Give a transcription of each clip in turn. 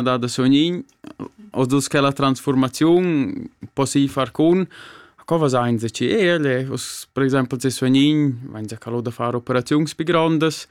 da da sognin os dus che la transformaziun possi far cun co vasain se ci ele us per exempel se sognin vain se calo da far operaziuns pi grondas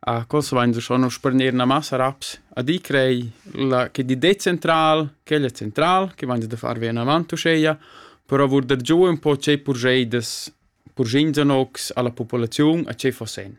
a cos vain se schon sparner na massa raps a di crei la che di det central quel è central che vain se da far vien avanti uscheia però vur der giù un po' ce purgeidas purgin zanox alla popolaziun a ce fossen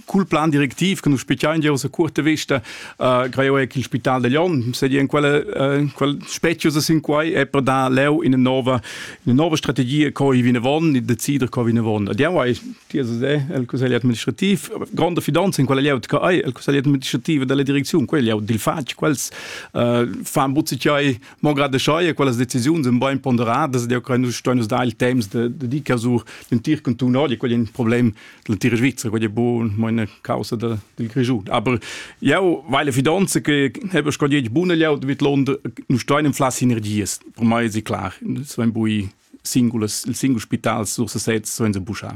cul plan directiv che nus spichiain giò sa cuorta vista uh, greo è in spital de Lyon se in quella uh, quel specius sin quai è per da leu in nova in nova strategia co i vine von e decider co vine von ad jau hai dir se el consiglio administrativ grande fidanza in quella leu che hai el consiglio administrativ della direzione quella leu dil fatg quels uh, fan butzi chai mongrade schai quelles decisioni sind bein ponderadas der kann nus stoi nus da il temps de de di casur den tir con tu no di quel problem l'entira Svizzera quella buon meine causa del, del Grischun aber jau weil fidanza che habe schon jetzt buona laut mit London nu stein in flas sinergies per mai ist klar so ein bui singulas il singul spital sur sesez so in buscha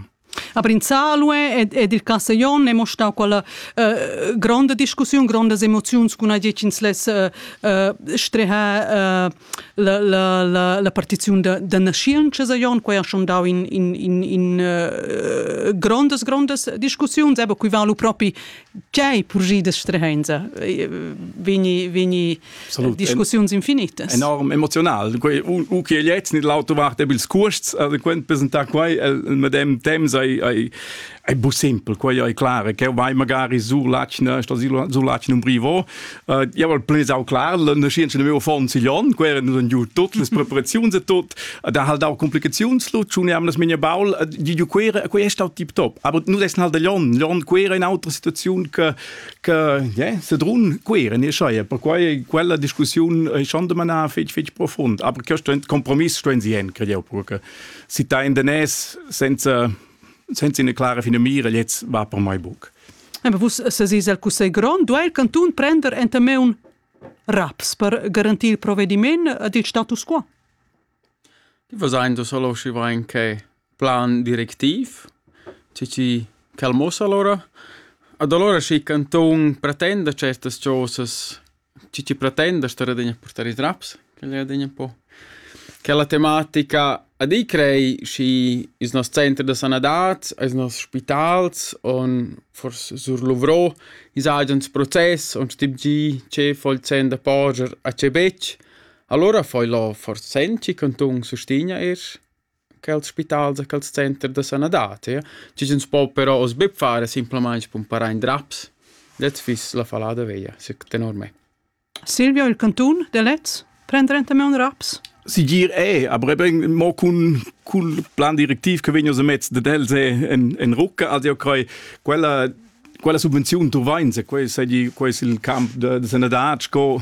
Aber in Salue ed, ed il Cassaglion è stata quella uh, grande discussione, grandes emozioni con la les uh, uh, streha uh, la, la, la, la partiziun da, da naschientscha saion quai ha schon dau in, in, in, in uh, grondas grondas discussiuns aber qui va lu propi chei purgi da strehenza vegni vegni Salut. discussiuns infinitas enorm emotional u che jetzt nicht laut du wart bil skurst also quent presenta quai el medem tem sei è bu simpel, quai è clar, che vai magari sur l'atschna, sur l'atschna un brivo. Uh, io al plesau clar, la nascienza nel mio fond siglion, quel era nun giù tutte le preparazioni e tutto, da hal dau complicazioni, lu tuniam las mia baul, di giù quera, quel è stato tip top. Aber nu des hal da Lyon, Lyon quera è un'altra situazione che, che yeah, se drun quera, ne schai, per quai quella discussione è schon da manà fetch fetch profond, aber questo è ein Kompromiss, stehen sie hin, credo, perché si ta in den es senza senza ina clara finamira, jetzt va per mai buc. Aber vus sesís al Cussegl grond, duai il cantun prender enta me un raps per garantir il provvediment ed il status quo? Die Versailles Saloshi war anche plan directiv, ci calmosa allora. Ad allora schi cantun pretenda certas cosas Tü ti pretend da star adina a purtar i traps, quel è adina ün po. Quella tematica a di crei schi ils noss center da sanadad, eis noss spitals on forsa surluvrò, ins haja ins process on stim tgi tge fo il sen da poger a tge betg. Alura fo ilo forsa senn, chi cantun sustegna eir. quels spitals e quels centers da sanadad, ja? chi ch'ns po però oz be far es simplamaing spumparar in draps. Dets fiss la fallada veglia, sic tenor me. Silvio, il cantun de Lez, prendere ente me un raps? Sigir è, aber eben mo cun cul plan directiv che vegn aus mezz de els è en, en rucca, also io crei quella quella subvenziun tu vain, se quei sei quei il camp de, de sanadad sco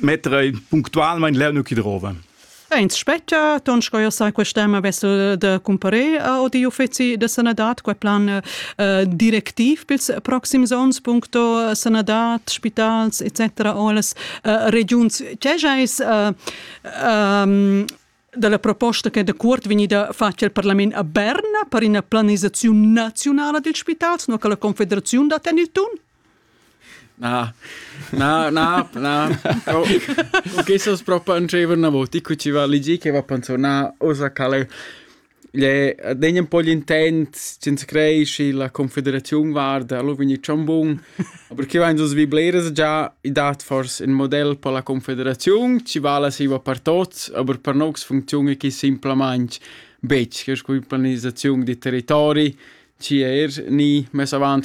mettere puntualmente le nucchi drove. Ins spetta, ton sco io sai quest'ema vessel de cumpare o di uffici de sanadat, quai plan uh, directiv pils proxims ons, puncto sanadat, spitals, etc. alles uh, regions. C'è uh, um, dalla proposta che dacuort vegnida fatg el parlament a Berna per ina planisaziun nazionala dils spitals, no che la confederaziun da tenir tun? Na, na, na, na. O che so propo anceva una volta, qui ci va ligi che va pensiona osa cale Igl è degn ën po l'intent senza crer schi la confederaziun varda, alura vegni dschan bun. Aber chi vain sus vi bleras già, i dat fors ün model per la confederaziun, chi vala siva per tots, aber per nox funcziuna chi simplamaing betg, che es cun planisaziun da territori, chi eir gnì mess avant